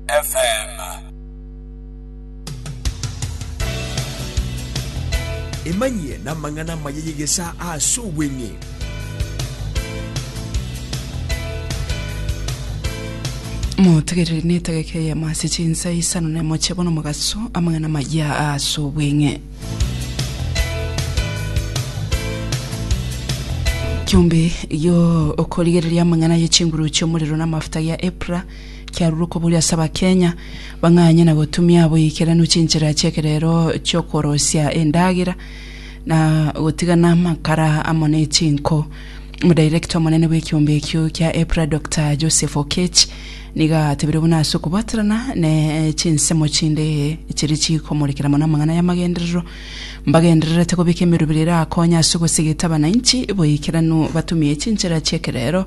FM. Emanyie namang'ana amaya y'egesa ase obweng'e. motegerere netageka eyemo ase chinsa isano na emoche bono mogaso amang'ana maya ase obweng'e kiombe yo okorigereria amang'ana ye chinguru chi'omorero na amafuta gia epra Kiarurwa kobori ase Abakenya bang'anye na gotumia boikeranu chinchera chi'ekerero chi'okorosia endagera na gotigana amakara amo ne chinko. Omodirector omonene bw'ekiombe ekio kia EPRA Doctor Joseph Oketch nigo atebirie buna ase okobwaterana ne chinsemo chinde chiria chikomorekera mono amang'ana y'amagenderero, mbagendererete kobeka emerubera erakonye ase ogosegeta abanainchi boikeranu batumie chinchera chi'ekerero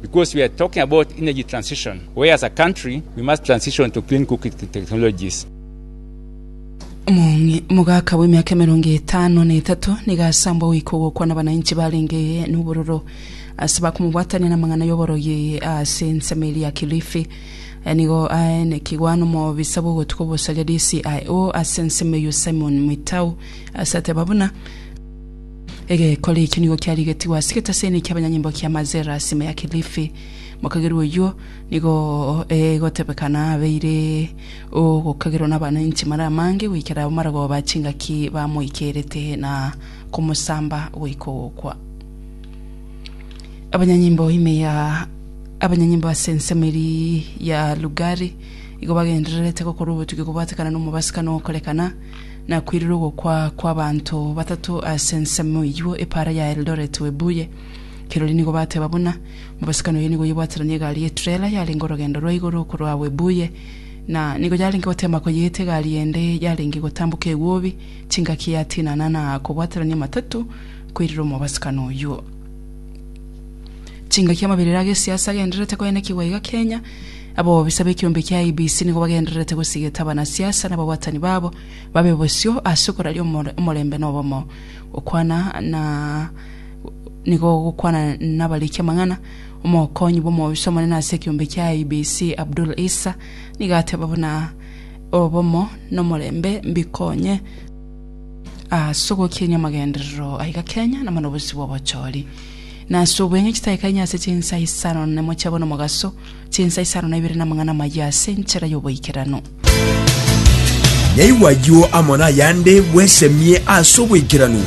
because we are talking about energy transition where as a country we must transition to clean cooking te- technologies. Mong'e- Omogaka bw'emiaka emerongo etano na etato nigo asambwa goika ogokwana abananchi barenge nobororo ase bakomobwatania namang'ana y'oborogi ase ensemo eria ya Kilifi. Aya nigo aye nekigwa nomobisa bw'ogotuko bosaria DCIO ase ensemo eyio Simon Mwitau ase ateba buna Egekori ekio nigo kiarigetigwe ase egetaseni ki'abanyanyimbo kia Mazera sime ya Kilifi. Mokagerwa oyio nigo egotebekana abeire ogokagerwa nabananchi mara amange goikera abamaragoba chingaki bamoikerete na komosamba goika ogokwa. Abanyanyimbo ime ya abanyanyimbo ase ensemo eria ya Lugari igo bagendererete gokorwa obotugi kobwatekana nomobasibkani ogokorekana Nakwirire ogokwa kw'abanto batato ase ensemo eyio epaara ya Eldoret Webuye. Kirori nigo bateba buna, mobasikani oye nigo oyebwateranie egari ye trela yarenge orogendo rwa igoro korwa Webuye na nigo yarenge gotema koyeeta egari ende yarenge gotamboka egwobi chingaki yatinana na kobwaterania matatu koirera omobasikani oyio. Chingaki amaberero agesiasa agendererete koenekigwa iga Kenya Ababisa b'ekiombe kia IEBC nigo bagendererete gosigeta abanasiasa na ababwatani babo babe bosio ase okoraria omor- omorembe na obomo. Gokwana na nigo gokwana nabariki amang'ana. Omokonyi bw'omobisa omonene ase ekiombe kia IEBC Abdul Issa nigo ateba buna obomo na omorembe mbikonye ase ogokinia amagenderero aiga Kenya na mono bosio bw'obochori na ase obweng'e chitaikainye ase chinsa isano na nemochie bono mogaso Chinsa isano na ibere namang'ana amayia ase enchera y'oboikeranu. Naigwa ayio amo nayande bwesemie ase oboikeranu.